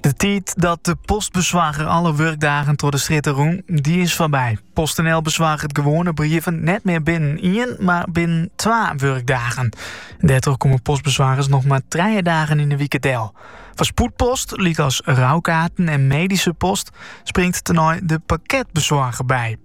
De tiid dat de postbesoarger alle wurkdagen troch de strjitte rûn, dy is foarby. PostNL besoarget gewoane brieven net mear binnen ien, mar binnen twa wurkdagen. Dêrtroch komme postbesoargers noch mar trije dagen yn de wike del. Foar spoedpost, lykas roukaarten en medyske post, springt tenei de pakketbesoarger by.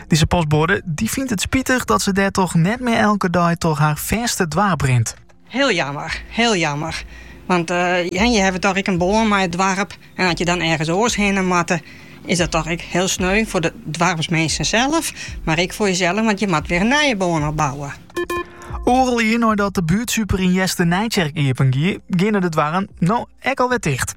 Dizze postboade dy fynt it spitich dat se dêrtroch net mear elke dei troch har fêste doarp rint. Hiel jammer, hiel jammer. Want je hawwe toch ek in bân mei it doarp. En as je dan ergens oars hinne moatte, is dat toch ek hiel sneu foar de doarpsminsken sels, mar ek foar jisels, want je moat wer in nije bân opbouwe. Oardel jier neidat de buertsuper yn Easternijtsjerk iepen gie, geane de doarren no ek alwer ticht.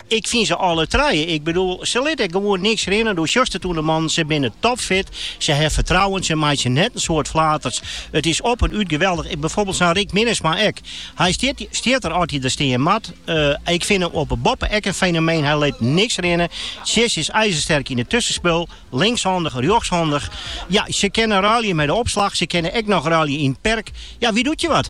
Ik fyn se alle trije. Ik bedoel, se lit ek gewoan niks rinne. Do sjochst it oan de mannen. Se binne topfit. Se ha fertrouwen. Se meitsje net in soad flaters. It is op en út geweldich. Byfoarbeeld sa'n Rick Minnesma ek. Hy stiet der as hy der stean moat. Ik fyn him op 'e boppe ek in fenomeen. Hy lit niks rinne. Tjisse is ijzersterk yn it tuskenspul. Linkshandich, rjochtshandich. Ja, se kinne ruilje mei de opslach. Se kinne ek noch ruilje yn it perk. Ja, wie doet je wat?